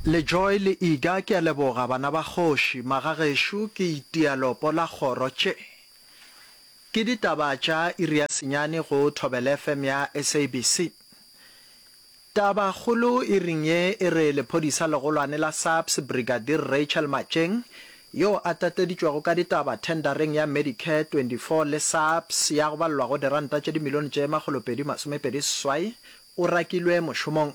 Lejoy le Iga ke a leboga bana ba kgoši, magagešo ke itia lopo la kgoro tše ke ditaba tša iri ya senyane go Thobela FM ya SABC. Taba kgolo iring ye e re lephodisa legolwane la SAPS Brigadier Rachel Matšeng yo a tateditšwego ka ditaba thendareng ya Medicare 24 le SAPS ya go balelwa go diranta tše dimilione tše makgolopedi masomepedi seswai O rakilwe mošomong.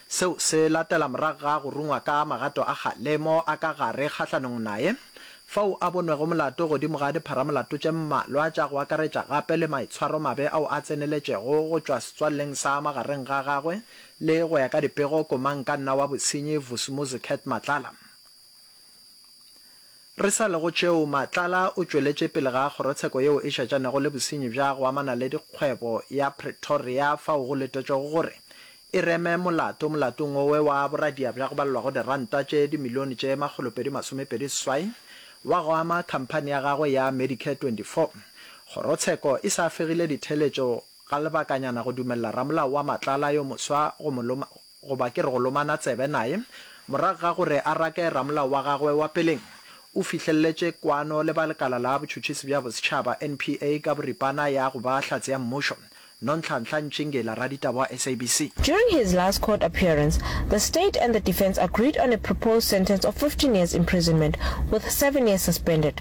Seo se latela morago ga go rungwa ka magato a kgalemo a ka gare kgahlanong naye, fao a bonwego molato godimo ga dipharamolato tše mmalwa tša go akaretša gape le maitshwaromabe ao a tseneletšego go tšwa setswalleng sa magareng ga gagwe le, go ya ka dipego, komangkanna wa bosenyi Vusumuzi Cat Matlala. Re sa le go tšeo, Matlala o tšweletše pele ga kgorotsheko yeo e šetšanego le bosenyi bja go amana le dikgwebo ya Pretoria fao go letetšwego gore e reme molato molatong wowe wa boradia bja go balelwago diranta tše dimilione tše makgolopedi masomepedi seswai wa go ama khamphani ya gagwe ya Medicare 24. Kgorotsheko e sa fegile ditheeletšo ga lebakanyana go dumelela ramolao wa Matlala yo moswa go mo Goba ke re go lomana tsebe naye. Morago ga gore a rake ramolao wa gagwe wa peleng, o fihlelletše kwano le ba Lekala la Botšhotšhisi bja Bosetšhaba, NPA, ka boripana ya go ba Hlatse ya Mmušo, Nonhlanhla Ntšingela, raditaba wa SABC. During his last court appearance, the state and the defence agreed on a proposed sentence of fifteen years imprisonment with seven years suspended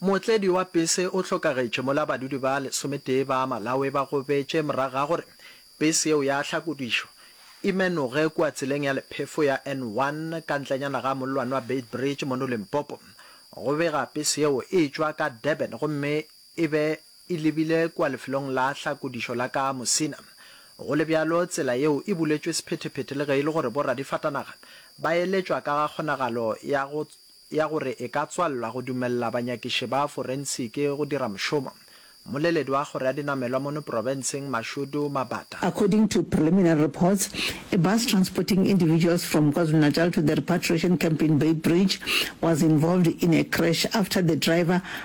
Mootledi wa pese o hlokagetše mola badudi ba lesometee ba Malawi ba gobetše morago ga gore pese yeo ya hlakodišwa e menoge kua tseleng ya lephefo ya N1 ka ntlenyana ga mollwane wa Beitbridge mono Limpopo. Go bega pese yeo e tšwa ka Durban gomme e be e lebile kua lefelong la hlakodišo la ka Musina. Go le bjalo, tsela yeo e buletšwe sephetephete le ge e le gore bo radifatanaga ba eletšwa ka ga kgonagalo ya go ya gore e ka tswalelwa go dumelela banyakiši ba forensiki go dira mošomo. Mmoleledi wa kgoro ya dinamelwa mono profenseng Mashudu Mabata, According to preliminary reports, a bus transporting individuals from KwaZulu-Natal to the repatriation camp in Beitbridge was involved in a crash after the driver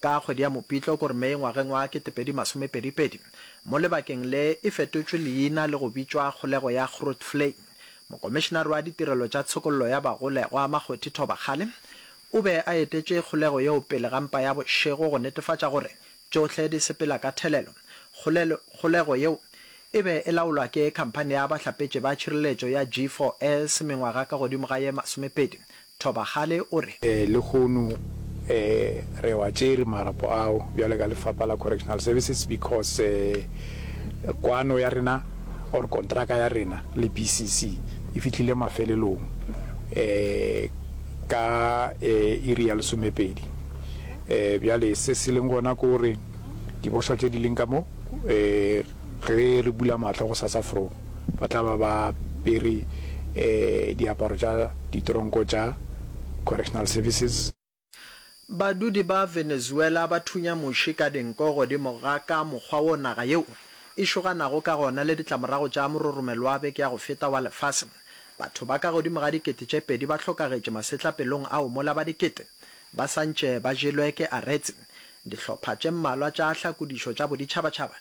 Ka kgwedi ya Mopitlo, ko re May, ngwageng wa ketepedi masome pedi pedi, mo lebakeng le, e fetotšwe leina le go bitšwa Kgolego ya Grootvlei. Mokomišenare wa Ditirelo tša Tshokollo ya Bagolegwa, Makgothi Thobakgale, o be a etetše kgolego yeo pele ga mpa ya bošego go netefatša gore tšohle di sepela ka thelelo. Kgolego yeo e be e laolwa ke Khamphani ya Bahlapetši ba Tšhireletšo ya G4S mengwaga ka godimo ga ye masomepedi Thobagale o re. Lehono re wa tšere marapo ao bjale ka Lefapha la Correctional Services because kwano ya rena or kontraka ya rena le BCC e fihlile mafelelong ka iri ya lesomepedi. Bjale se se leng gona ke gore dibošwa tše di leng ka mo ge re bula mahlo gosasa fro ba tla ba ba apere diaparo tša ditronko tša Correctional Services. Badudi ba Venezuela ba thunya muši ka dinko godimo ga ka mokgwa wo naga yeo e šoganago ka gona le ditlamorago tša mororomelo wa beke ya go feta wa lefase. Batho ba ka godimo ga dikete tše pedi ba hlokagetše masetlapelong ao mola ba dikete ba sa ntše ba jelwe ke aretse. Dihlopha tše mmalwa tša hlakodišo tša boditšhabatšhaba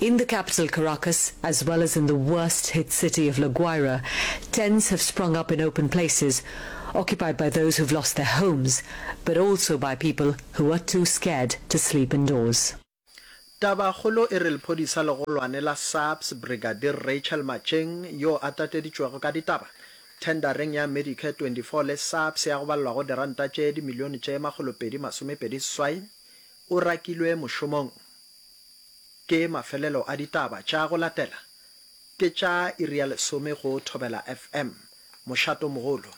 In the capital Caracas, as well as in the worst hit city of La Guaira, tents have sprung up in open places, occupied by those who've lost their homes, but also by people who are too scared to sleep indoors. Tabakgolo e re lephodisa legolwane la SAPS Brigadier Rachel Matšeng yo a tateditšwego ka ditaba thendareng ya Medicare 24 le SAPS ya go balelwago diranta tše dimilione tše makgolopedi masomepedi seswai o rakilwe mošomong. Ke mafelelo a ditaba tša go latela ke tša iri ya lesome go Thobela FM, Mošatomogolo.